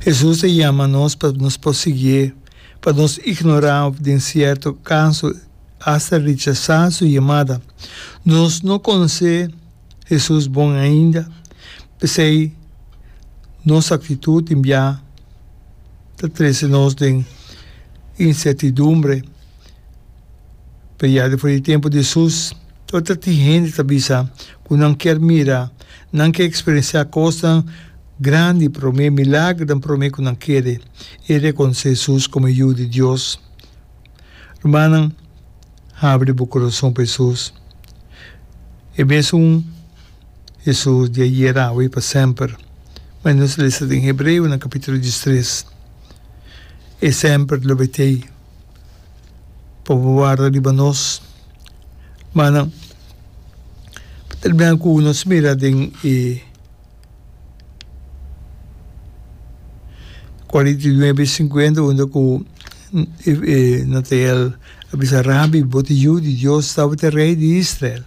Hesus ta yama nos pa nos por siguié, pa nos ignorá òf den sierto kaso asta rechasá su yamada. Nos no konosé Hesus bon ainda, p'esei nos aktitut den bia ta trese nos den insertidumbre. Pero ya despues di tempu di Hesus, ora tin hende ta bisa ku nan kier mira, Nan ke eksperensiá kosnan grandi promé, milagernan promé ku nan kere i rekonosé Hesus komo e Yu di Dios. Rumannan, habri bo koroson pa Hesus, e mesun Hesus di ayer, awe i pa semper. Mane nos a lesa den Hebreonan kapítulo dies tres, E semper lo bet'ei. pa bo warda riba nos. Manan, pa terminá ku nos mira den e kuarenta i nuebe i sinkuenta unda ku e Natael a bisa, Rabi, bo ta e Yu di Dios, tabata e Rei di Israel.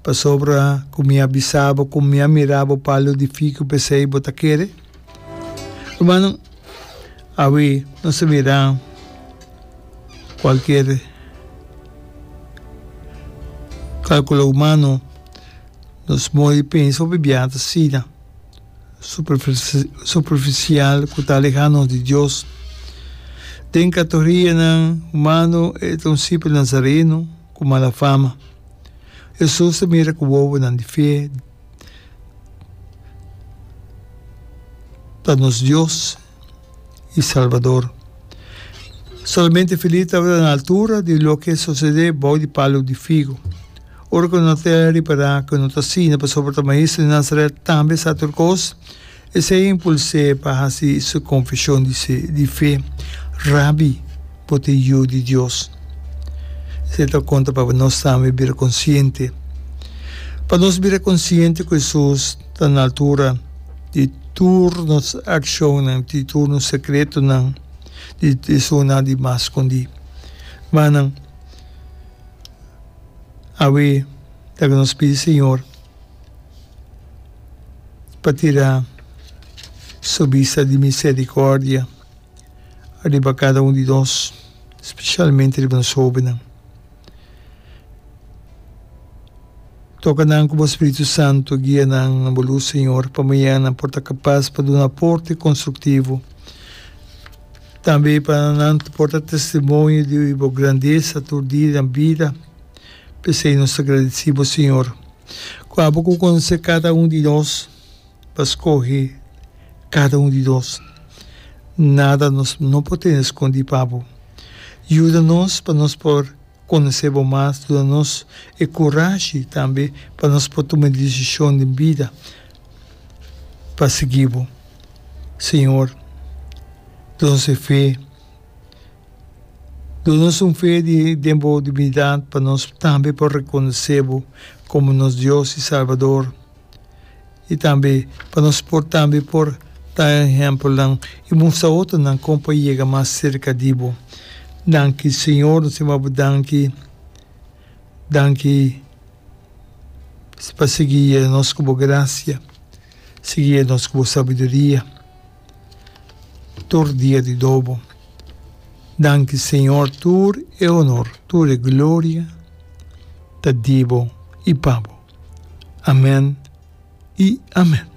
Pasobra ku mi a bisaba ku mi a mira bo palo di figu, p'esei bo ta kere? Rumannan, awe nos ta mira cualkier calculo humano, nos modo di pensa o bibia ta asina, superficial, cu ta aleha nos di Dios. Den categorianan humano e ta un simpel nazareno cu mala fama. Hesus ta mira cu wowonan di fe. ta nos Dios y Salvador. Solamente feliz tabata na altura di loke sosede bou di palu di figu. Ora cu no ta repará cu no ta asina pasobra ta Maestro di Nazaret tambe sa tur cos, Esei a impuls'é pa hasi su konfeshon di se di fe, Rabbi, bo ta e Yu di Dios. Esei ta konta pa nos tambe bira konsiente. Pa nos bira konsiente ku Hesus ta na altura di tur nos akshonnan, di tur nos sekretonan, di esunnan di mas skondí. Mannan, awe, ta ku nos pidi Señor. pa tira Su bista di misericordia riba cada un di nos, specialmente riba nos hobennan. Toca nan cu Bo Spiritu Santo guia nan na Bo luz, Señor, pa mañana nan por ta capaz pa duna aporte constructivo, tambe pa nan por ta testimonio di Bo grandesa tur dia den bida. P'esei nos ta gradici bo, Señor, cu abo cu conoce cada un di nos ta scoge cada un di nos. Nada nos no por tene scondi pa bo. Yuda nos pa nos por conoce bo mas, duna nos e curashi tambe pa nos por tuma e decision den bida pa sigui bo. Señor, duna nos e fe. Donanos un fe den bo divinidad pa nos tambe por reconoce bo como nos Dios y Salvador y tambe pa nos por tambe por ta ehempelnan y mustra otronan con pa yega mas cerca di bo. Danki Señor, nos yama bo danki, danki pa sigui yega nos cu bo gracia, sigui yega nos cu bo sabiduria. tur dia di dobo. Danki Señor tur e honor tur e gloria ta di bo i pa bo. Amen i amen.